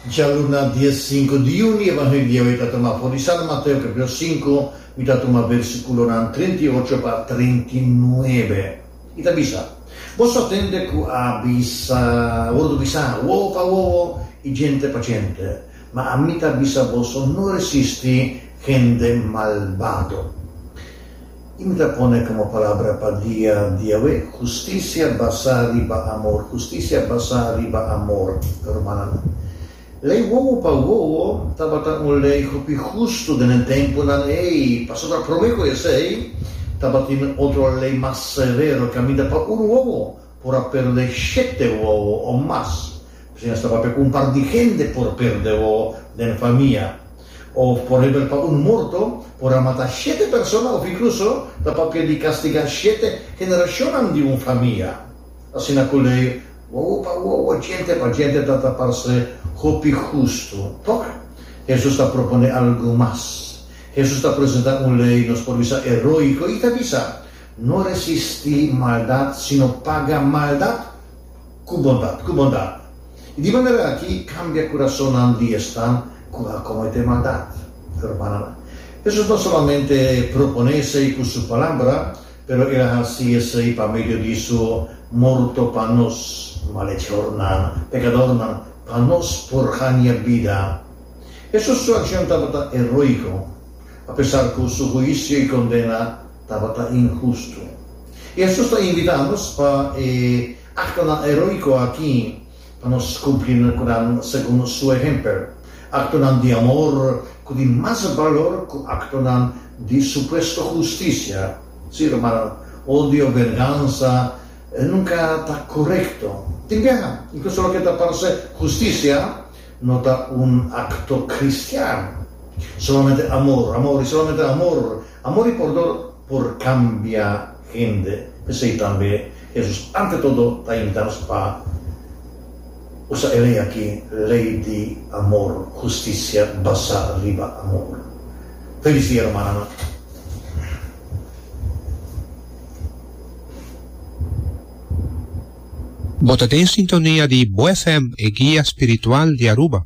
Dja lo na dia sinku di yuni e Evangelio ei ta tuma for di San Mateo capitulo sinku, mi ta tuma bersikulonan treinta i ocho pa treinta i nuebe. I ta bisa, Bo sa tende ku a bisa, wòrdu bisa, wowo pa wowo i jente pa jente, ma ami ta bisa boso, no resisti hende malbado. I mi ta pone komo palabra pa dia di awe, hustisia basá riba amor, hustisia basá riba amor, rumannan. Lei wowo pa wowo tabata un lei hopi hustu den e tempunan ei, pasobra promé ku esei tabatin otro lei mas severo kaminda pa un wowo por a perde shete wowo o mas. Asina sta papia ku un par di hende por perde wowo den famia. Òf por hebel pa un morto por a mata shete persona òf inkluso ta papia di kastigá shete generashonnan di un famia. Asina ku lei wowo pa wowo, djente pa djente ta ta parse hopi hustu. Tok, Hesus ta proponé algu mas. Hesus ta presentá un lei nos por bisa eróiko i ta bisa, No resisti maldat, sino paga maldat ku bondat, ku bondat. I di manera aki kambia kurasonnan di esnan ku a kometé maldat. Hermananan, Hesus no solamente proponé esei ku su palabra, pero el a hasi esei pa medio di su morto pa nos malechornan, pekadornan, pa nos por haña bida. Hesus su akshon tabata heroiko, apesar ku su huisio i kondena, tabata inhustu. I asus ta invitá nos pa e aktonan eróiko akí pa nos kumpli nan segun su ehèmpel, aktonan di amor ku tin mas balor ku aktonan di supuesto hustisia, sí rumannan, odio o vengansa nunka ta korekto. Tin biaha, inkluso loke ta parse hustisia, No ta un acto cristian. Solamente amor, amor y solamente amor. Amor y pordon por cambia hende. P'esey tambe Jesus ante todo ta invita nos pa usa e ley aki, ley di amor, husticia basa riba amor. Feliz dia Romananan. Bo ta den sintonia di Bo FM e guia spiritual di Aruba.